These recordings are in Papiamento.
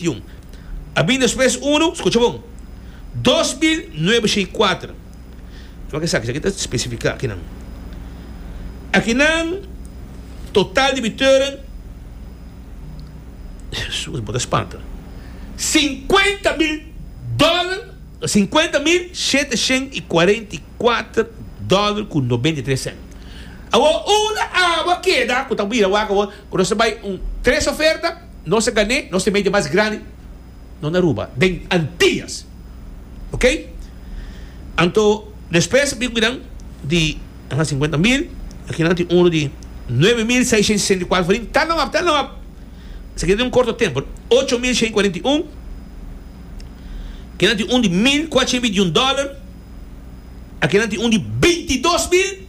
Tion. A bin despues unu, scucha bon, dos mil nuebe shei cuater. Tuma esaki, esaki ta specifica akinan. Akinan total debiteuren, Jesus, bo ta spanta, cincuenta mil dollar, cincuenta mil sheteshent y cuarenta y cuater dollar cu nobenta y tres cent. Awor unda abo a keda cu ta bira wak awor cu nos ta bay un tres oferta? Nos a gané, nos ta media mas grandi no na Aruba den Antillas ok anto despues a bin cu minan di aha cincuenta mil akinan tin uno di nueve mil seiscientos y sesenta y cuatro farin ta nop ta nop esaki ta den un corto tempo no ocho mil cien y cuarenta y un kinan tin un di mil cuatrocientos veintiun dollar akinan tin un di bintidos mil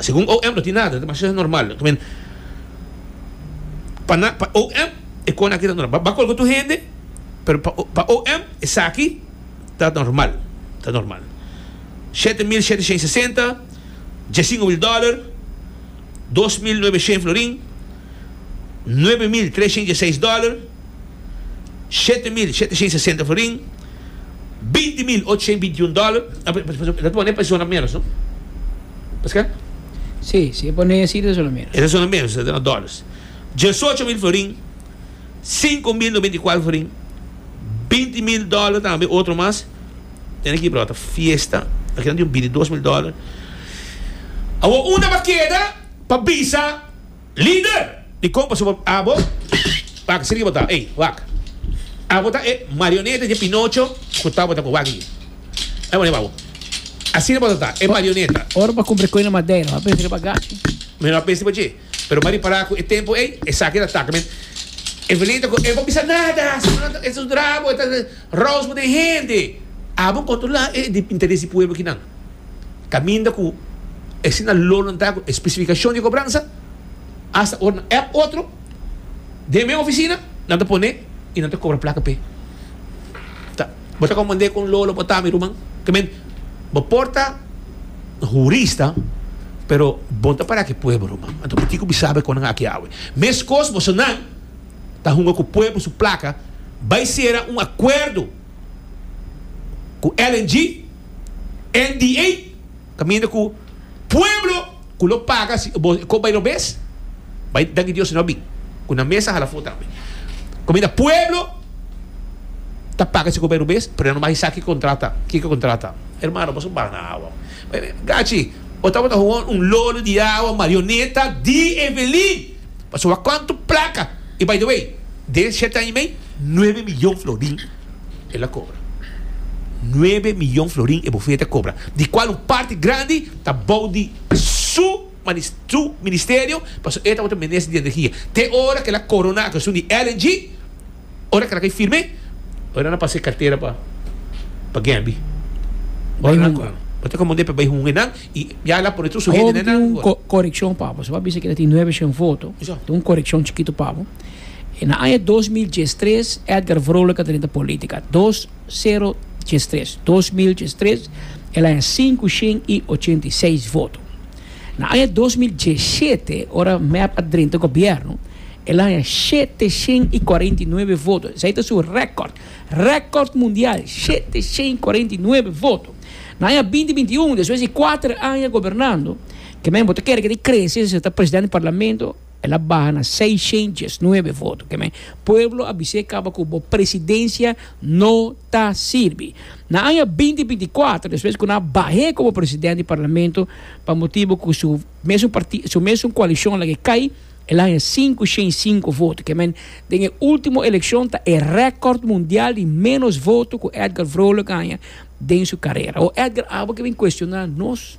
Segun OM no tin nada, ta masha normal. I mean, pa na, pa OM e cosa aki ta normal. Ba colga tur hende, pero pa, pa OM esaki ta normal, ta normal. Shete mil shete shen sesenta, diessinco mil dollar, dos mil nuebe shen florin, nuebe mil tres shen dieseis dollar. shete mil shete shen sesenta florin, binti mil ocho shen binti un dòler, e ta pone pa e zona menos no? Paskal? Sí, si e pone así ta zona menos. E ta zona menos, ta na dòlars. Diesocho mil florin, sinku mil noventa i kuater florin, binti mil dòler tambe otro mas, tene aki bro ta fiesta, aki nan tin un bil di dos mil dòler. Awor un ta pa keda pa bisa. Lider di kompas abo abo wak sirgi bo ta ey wak abo ta e marioneta dje pinocho ku tabata ku wak ey ey bo neba abo asina bo ta ta e marioneta. Ora bo ta kumpra e koe na madera bo a pensa riba agachi. Mi no a pensa riba dje pero mi a ripara ku e tempu ey esaki ta taka men Evelin ta ku e bo bisa nada e ta sudra bo e ta rouse bo den hende abo kontrola e interes di pueblo kinan. kaminda ku e siñal lolontá ku e spesifikashon di kobransa asta ora nan app otro den mes ofisina nan ta pone i nan ta kobra plaka p'e. Ta bo ta komprendé kon lolo bo ta mi ruman? Ta min bo por ta hurista pero bo ta para ki pueblo ruman anto por kiko bo sabe kon nan aki awe meskos bosonan ta hunga ku pueblo su plaka bai sera un akuerdo ku LNG NDA caminda cu pueblo cu lo paga si bo e cop bay robes bay danki Dios sino abi cu nan mes a hala fo tambe caminda pueblo ta paga si cop bay robes pero nan no bay sa ki contract ta ki ki contract ta hermano boso bana awa gachi bo tabata hoon un lolo di awa marioneta di Evelyn pasobra cuanto placa y by the way den siete aña y mey nuebe millon florin. El a kobra. Nuebe miyon florin e bofete a kobra, di kual un parti grandi ta bou di su su ministerio pasobra e tabata minister di energia te ora ku el a koroná ku esun di LNG, ora ku el a kai firme, ora nan a pas'é kartera pa pa Gambie. Ora nan a kòrda. Bo ta komand'é pa bai hunga nan i ya el a pone tur su hende nenan. Korekshon, papa. Su a bisa ku e tin nuebe shen voto. Te un korekshon chikitu, papa. E na aña dos mil diestres Edgar Vrolijk a drenta politica. Dos sero diestres dos mil diestres el a haña sinku shen i ochenta i seis voto. Na aña dos mil diesete ora mep a drenta gobierno el a haña shete shen i cuarenta i nuebe voto. Esei ta su record. Record mundial shete shen i cuarenta i nuebe voto. Na aña binti binti un despues di cuater aña gobernando ke men bo ta kere ke ta crece si ta president di parlamento. El a baha na seiscientos diesnuebe voto. Keme? Pueblo a bis'é kaba ku bo presidencia no ta sirbi. Na aña binti binti kuater, despues ku nan a bah'é komo presidente di parlamento pa motibu ku su mesun partido, su mesun koalishon lag'é kai, el a haña sinku shen i sinku voto. Keme? Den e ultimo elekshon ta e rekòrt mundial di ménos voto ku Edgar Vrolijk a haña den su karera. O Edgar abo ke bin kuestioná nos?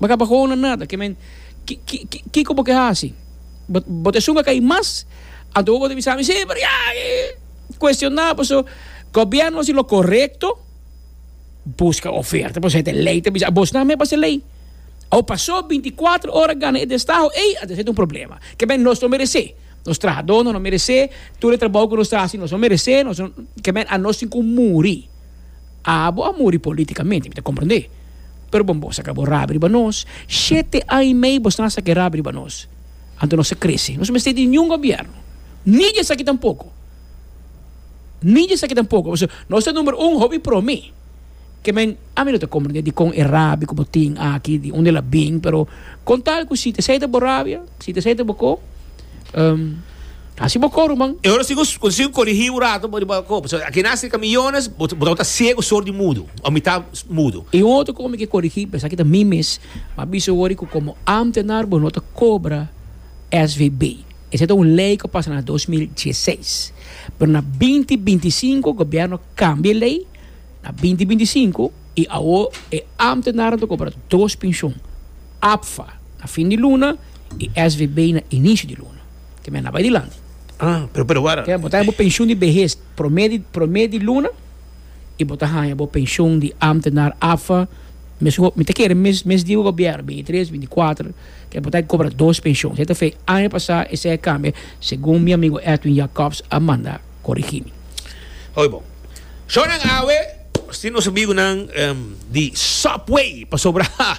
Bo kaba hono nada. Ke men, ki, ki, ki, kiko bo ke hasi? Bo, bo ta esun a kai mas? Anto bo ta bisa mi, sí, pero ya, cuestioná, paso gobierno haci lo correcto, busca oferta, paso e ta e ley ta bisa, abosnan me basa e ley. Awor, paso binti kuater ora gana e destaho, ey, a ta ser un problema. Ke men, nos no meresé. Nos trahadornan no meresé. Tur e trabou ku nos ta hasi, nos no meresé. Nos no, ke men, a nos tin ku muri. Abo a muri politicamente, mi ta comprende. Pero bon, bo sa ca bo rabi riba nos, shete an y mei bo sna sa ke rabi riba nos. Anto nos ta crece. Nos no mester tin niun gobierno, ni di esaki tampoco, ni di esaki tampoco. Pasobra nos ta numero un hopi pro mi. Ke men, ami no ta comprende dikon e rabi ku bo tin aki, di unda el a bin, pero con tal ku si ta esei ta bo rabia, si ta esei ta bo ko. Hasi bo coro man. E ora si cu si cu corigi un rato bo riba copa. So aki na cerca millones bo bo ta ciego sordi mudo o mitad mudo. Y un otro cosa mi ke corigi p'esaki ta mi mes, m'a bisa wor cu como ambtenaar bo no ta cobra SVB. Esey ta un ley cu a pasa na dos mil dieseis. Pero na binti binti i sinku gobierno cambia e ley na binti binti i sinku y awor e ambtenaarnan ta cobra dos pensioen. APFA na fin di luna y SVB na inicio di luna. Te menda bay dilanti. Ah, pero, pero wara. Te bo ta haña bo pensioen di behes prome di prome di luna y bo ta haña bo pensioen di ambtenaar, APFA, mes ho mi ta kere mes mes di gobierno, binti tres, binti kuater, te bo ta cobra dos pensioen. Esei ta fe aña pasa, esei a cambia segun mi amigo Edwin Jacobs a manda corigi mi. Oye bo. Shornan awe, nos tin nos amigonan di Subway, pasobra, ha!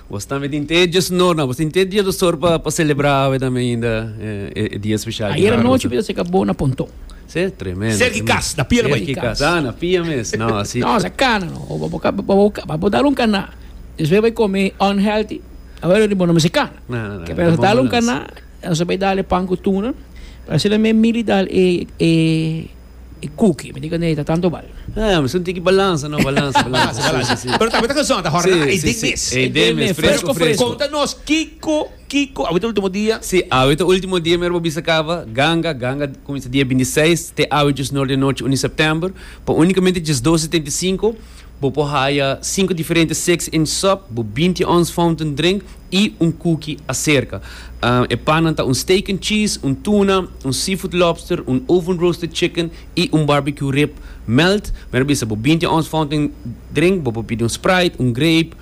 Bos tambe tin te diesunor na. Bos tin te dia dosor pa pa celebra awe tambe ainda e dia especial di Harlem. Ayer anochi bida seca bo na Pontón. Sí, tremendo. Cerca di cas, na pia lobaí. Cerca di cas, ah, na pia mes, no asi. No, sa cana no. Bo bo dal un cana, despues bai come unhealthy, awe lo riba no mester cana. No, no, no. Ke pensa dal un cana, nos a bai dale pan cu tuna, asina mi Milly dal e e. E cookie, mi tika neita tanto bal. Ah, mi sinti ki balansa no, balansa, balansa. Balansa, balansa, si. Pero ta awinter kazón, ta hora nan, ei den mes. Ei den mes, fresco, fresco. Konta nos kiko, kiko, awinter ultimo dia? Si, awinter ultimo dia mero pa bisa kaba, ganga, ganga kuminsa dia binti seis te awe djesnor de anochi, uni september, pa unikamente djesdos setenta i sinku, Bo por haya sinku diferente six inch sop, bo binti ons fountain drink i un kuki aserka. E pannan ta un steak and cheese, un tuna, un seafood lobster, un oven-roasted chicken i un barbecue rib melt. Mira bisa, bo binti ons fountain drink, bo por pidi un Sprite, un grape,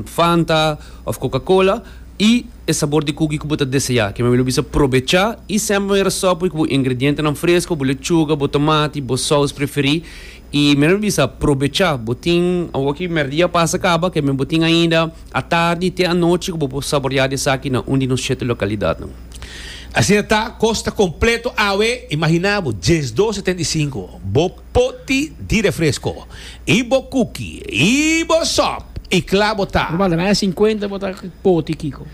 Fanta òf Coca-Cola i e sabor di kuki ku bo ta deseá. Kime'e bo lo bisa probechá i semper manera sop pui ku bo ingredientenan fresko, bo lechuga, bo tomati, bo sous preferí. I mi lo bisa, probecha, bo tin, awoki merdia a pasa kaba, ke men bo tin ainda atardi te anochi ku bo por saboreá di esaki na un di nos shete lokalidatnan. Asina ta, kosta kompleto awe, imaginá bo, dies dos setenta i sinku, bo poti di refresko, i bo kuki, i bo sòp, i kla bo ta. Ruman ta, na e sinkuenta bo ta poti kiko?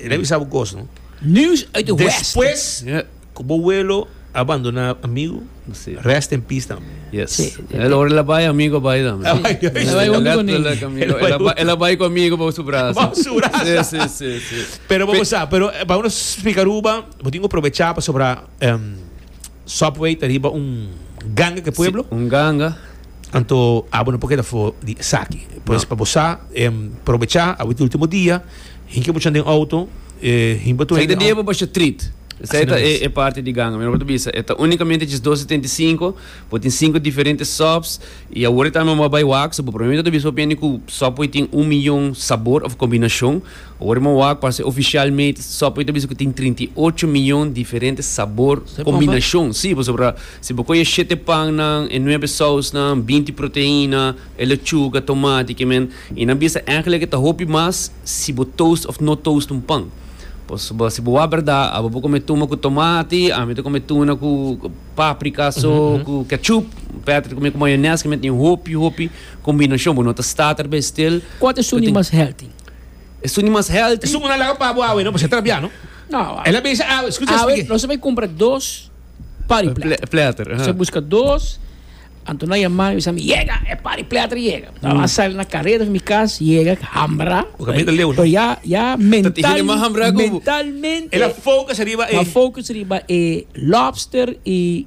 E ta bisa bo kos no. News uit e west. Despues ku bo welo a bandoná amigu, rest in peace tambe. Yes. El ora el a bai, amigu a bai tambe. El a bai hondo ku amigu. El a bai ku amigu bou su braso. Bou su braso. Si, si, si. Pero bo sa, pero pa uno spika Aruba, bo tin ku probechá pasobra. Subway ta riba un ganga ke pueblo? Sí, un ganga. Anto abo no por keda for di esaki. Pues no. pa bo sa, em, probecha, abo ta ultimo dia, hinka bo chan den auto, e himba tur hende. Sa e ta dia pa basha trit. Sa e ta e, e parti di ganga. Mi no por ta bisa. E ta unikamente dje dos setenta i sinku, bo tin sinku diferente subs, i awor e ta anba bai wak, so bo probablemente ta bisa hopi hende ku subway tin un miyon sabor òf kombinashon. Ora mi wak pa haci oficialmente Subway ta bisa cu tin trinta i ocho miyon diferente sabor combinacion. Sí, pasobra si bo coge e shete pannan, e nuebe sausnan, binti proteina, e lechuga, tomati, ke men, y nan bisa eigenlijk e ta hopi mas si bo toast of no toast un pan. Pasobra si bo wak berda, abo bo come tuma cu tomati, ami ta come tuna cu paprika so, cu ketchup, Patrick ta come cu mayones, ke men tin hopi hopi combinacion. Bo no ta sta ta riba e stil. Cua ta suni mas healthy? Es un di mas healthy. Esun una laga pa bo awe no, pues e trabia no. No. El a bisa awe, escucha espliki. Awe nos a bai cumpra dos party platter. Platter, aha. Nos a busca dos, anto na yama mi bisa mi, yega, e party platter yega. Nos a sali na carrera di mi cas, yega, hambra. Bo caminda ta leu no. Pero ya, ya mental. Ta tin hende mas hambra cu bo. Mentalmente. El a focus riba e. A focus riba e lobster y.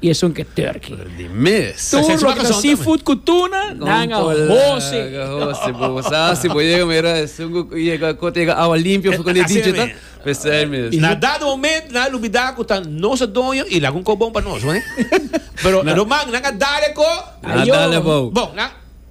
y esun ke turkey. Di mes. Tur Sa loke ta seafood ku tuna nan a hosi. Hosi bo sa si bo yega mira esun ku yega kota yega awa limpio for kone dicho ta pesai mes. Na dado momento nan a lubida ku ta nos a doño y laga un kop bon pa nos. Pero Roman nan a dale ko. Nan a dale abou. Bon nan.